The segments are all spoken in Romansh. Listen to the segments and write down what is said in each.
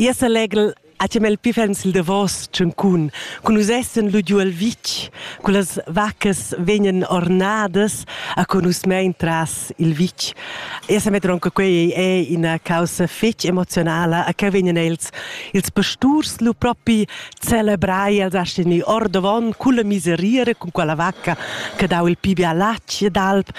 Io selegl a chamel pifens il davos tschuncun, cun nus essan lu giu el vitg, cu las vaccas vegnan ornadas a con nus mein tras il vitg. Io sa metter onca quei ei ina caussa fetg emozionala, a che vegnan els, ils pasturs lu propi celebrai, els astgan ir ordavon culla miseria cun quella vacca che dau il pi bia latg ed alp.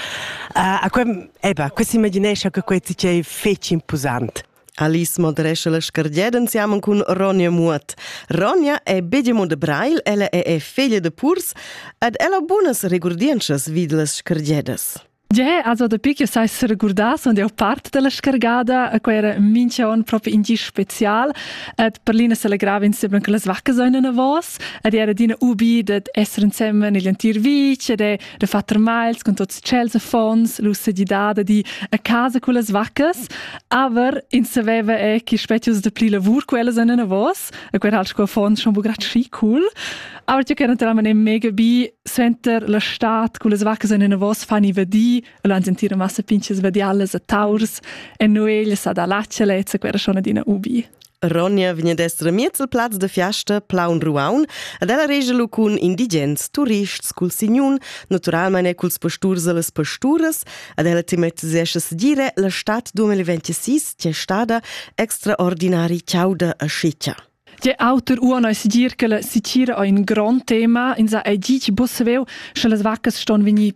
Uh, a que, eba, que s'imaginescha che quei tgei fetg imposant. Alice modrescha la scargieda insiamen cun Ronja Muot. Ronja è bedimo de Brail, ella è è figlia de Purs ed ella bunas regurdientschas vid las scargiedas. Ge, also dapi che sai se recordar, sono io parte della scargada, e quella era mincha on proprio in special, ed per l'ina se legrava insieme con le vacche sono una vos, ed era dina ubi de essere insieme nell'antir vice, de de far termals con tots tschels affons, l'ussegidada di a casa con las vaccas, aber in saveva è che spezius de pli lavur quellas an in avos, e quer hal sco affons schon bu grat schi cool. Aber io ken terammen im mega bi center la stat con las vaccas in avos fani vedi, e lan sentire massa pinches vedi alles a taurs, e noi le sa da laccia lezza quera schon adina ubi. Ronja vegn ad esser miez al plaz da fiasta Plaun Ruaun ed ella regia lu cun indigens, turists, cul signun, naturalmein e culs pasturs e las pasturas ed ella tematisescha segire la stad 2026 che è stada extraordinari chauda e sciccia. Tge auter uona è segir che la sitira è un grond tema. Ins ha ei ditg busseveu, sche las vaccas ston vegnir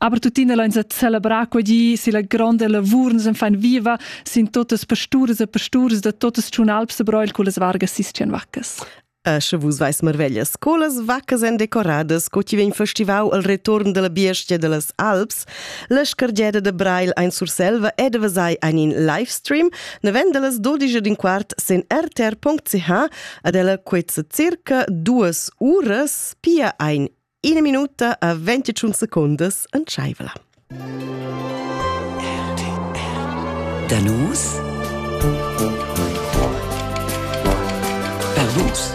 Aber tuttina lain sa celebrar quegli si la gronda lavur nus fan viva sin totas pasturas e pasturas da totas tschunalps e broil con las vargas sistian vaccas. E sche vus vais marveglias, co las vaccas èn decoradas, co ti vegn festivau al return della biestia de las Alps, la scargeda de Brail ein Surselva e de Vasai ein in livestream, ne vend las 12 din quart sen rtr.ch ad ella quetza circa duas uras, pia ein Ina minuta a 25 secundas entschaiva. Danus per vus.